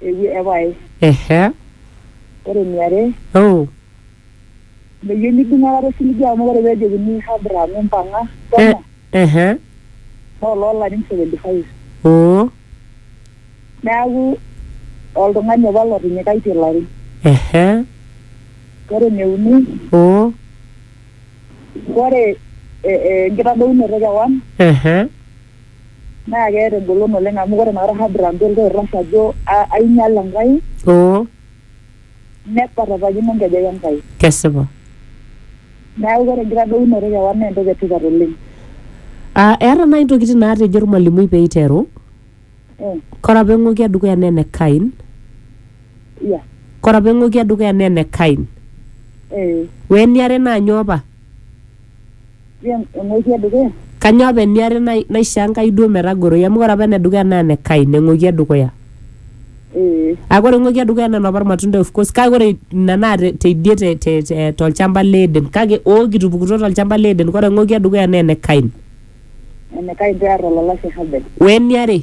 ewe- epae. ehe Ore eniare, oh meyieu nidung aikata osiligi amu ore pee ejokini Abraham impang'a eh, shomo ehe naa oloolarin 75. oo Neaku oltung'ani apa lotinyikaitie ilarin. ehe Ore eneuni, oo ore eh, eh, enkitadounoto e kewan ehe Naa keeta engolon oleng amu ore inakata Hadra mpe oltau oitashe ajo ainyal Enkai. Oo. Nekwatatakino nkejek Enkai. Kesipa. Neaku ore enkitadounoto e kewan naa entoki e tipat oleng. Aa eeta naaji intokitin naatejo olmalimui pee eiteru. Ore apa eng'oki e dukuya naa ene Kain. Ore apa eng'oki e dukuya naa ene Kain. Ore eniare naa nyoo apa? eng'ueji edukuya Kanyoo apa eniare nai- naisho Enkai duo metagoroi? Amu ore apa enedukuya naa ene Kain, eng'uoki edukuya. ee Kake ore eng'uoki edukuya naa enoopa ilmatunda of course. Kake ore ina naa te- teidie te- te- te- tolchamba le Eden. Kake oo kitupukutuo tolchamba le Eden. Ore eng'uoki edukuya naa ene Kain. enekai pear olalashe Habel Weniare,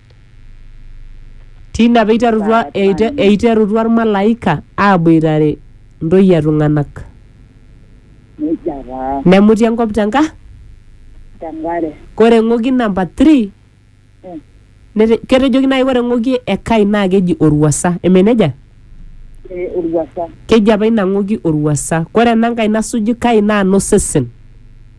Tina pee eiterutua eite- eiterutua ilmalaika aaboitare ntoyie e tung'anak. Neija taa Nemuti enkop te nka, tenkare. kore eng'oki namba 3 Eh. nete- ketejoki naaji kore eng'oki e Kai naa keji olwuasa, eme neija? Eh, olwuasa. Keji apa ina ng'oki olwuasa. Kore enankai nasuju Kai naa nosesen.